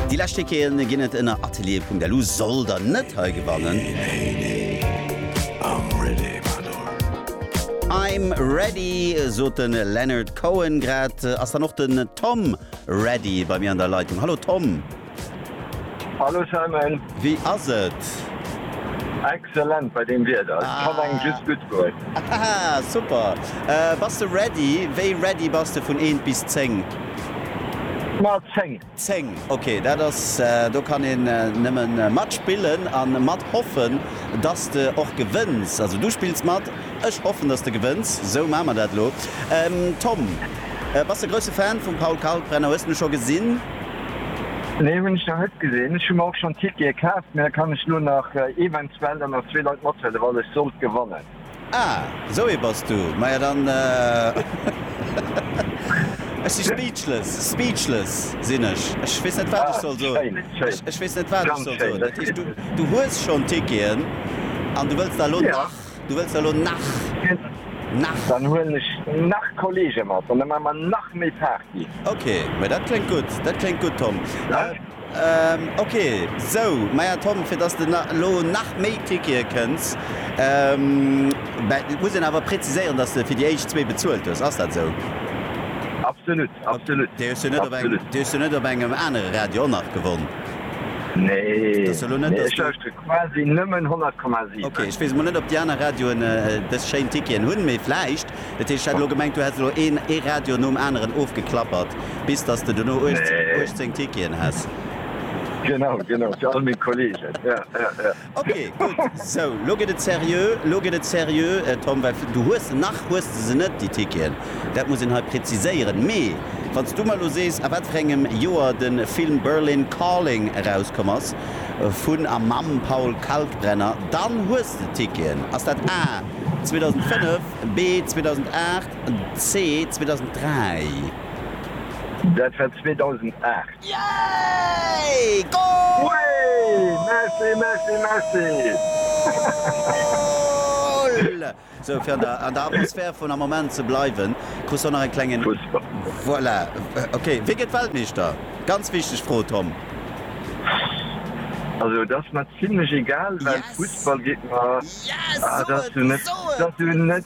Déi lescht Ticketen ginn et ënner atelier.lu. Soll der net hei gewannen? I'm ready, sot de Leonard Cohen. Grad ass dann och den Tom ready bei mir an der Leitung. Hallo Tom. Hallo Simon. Wéi ass et? Excellent bei deem Wieder, et kann engem just gutt goen. Haha super! Bass de ready? Wéi ready bass de vun eent bis zéng? Ma 10. 10, ok dat ass, do kann een nëmmen mat spillen an mat hoffen dass de och gewënns. Also du spills mat, ech hoffen dass de gewënns, sou maan mer dat lo. Tom bass de grousse Fan vum Paul Kalkbrenner, hues de en scho gesinn? Nee hunn ech nach net gesinn. Ech hu mer och schonn Tickete kaaft, mä da kann ech elo nach eventuell dann nach zwee Leit mathuelen, wann ech sollt gewannen. Ah, esou ee bass du. Maja dann, ech si speechless, speechless sinn ech. Ech weess net wat ech soll soen. Ah, schéin, schéin. Ech weess net wat ech soll soen. Dat heescht, du hues schonn Ticketen an du wëlls der elo nach Du wëlls der elo nach? Nach? Dann huelen ech nach Kollege mat an da maache mer nach méi Party. Ok, mä dat kléngt gutt. Dat kléngt gutt, Tom. Ok, sou. Maja, Tom, fir dass de elo nach méi Tickete kënns, muss een awer präziséieren, dass de fir déi éischt zwee bezuelt hues. Ass dat esou? Absolut. Absolut. Déi hues du net op eng, déi hues du net op engem anere Radio och nach gewonn? Nee, nee, ech lauschteren quasi nëmmen 100,7. Ok, ech weess emol net op déi aner Radioen dës schéin Ticketen hunn, mee vläicht. Dat heescht, ech hat elo gemengt, du häss elo een, ee Radio nom aneren ofgeklappert, bis datt s de duerno 18 Ticketen häss. Genau, genau, fir all meng Kollegen, ja, ja, ja. Ok gudd, sou lo gëtt et seriö, lo gëtt et seriö Tom, well du hues se nach hues de se net déi Ticketen, dat muss een hei präziséieren. Mee wann s du mer lo sees a wat fir engem Joer de Film Berlin Calling erauskomm ass vun a mam Paul Kalkbrenner, dann hues de Ticketen. Ass dat A, 2005, B, 2008, C, 2003? Dat war 2008. Yay! Goal! Sou, fir an der Atmosphär vun am Moment ze bleiwen, krus do nach en klengen. Voilà, ok. Wie gëtt Weltmeeschter? Ganz wichteg Fro, Tom. Also et ass mer zimlech egal, well Fussball geet mer. Yes! Soen! Soen!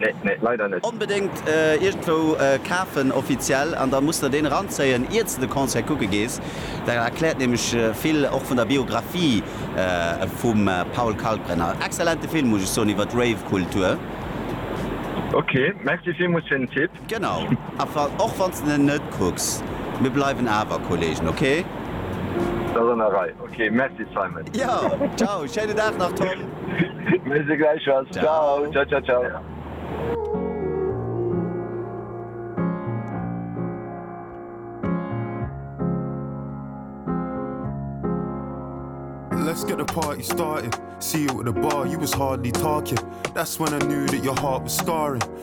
Nee, nee, leider net. Onbedéngt iergendwou kafen, offiziell, an da muss der deen eranzéien, iert s de de Concert kucke gees. Dat erkläert nämlech vill och vun der Biographie vum Paul Kalkbrenner. Excellente Film, muss ech soen, iwwer d'Rave-Kultur. Ok, merci villmools fir den Tipp. Genau, enfin, och wann s de en net kucks, mir bleiwen awer Kollegen, ok? S ass an der Rei, ok. Merci Simon. Jo, ciao, schéinen Dag nach Tom. Merci gläichfalls, ciao, ciao, ciao, ciao. Let's get the party started, see you at the bar, you was hardly talking, that's when I knew that your heart was scarring.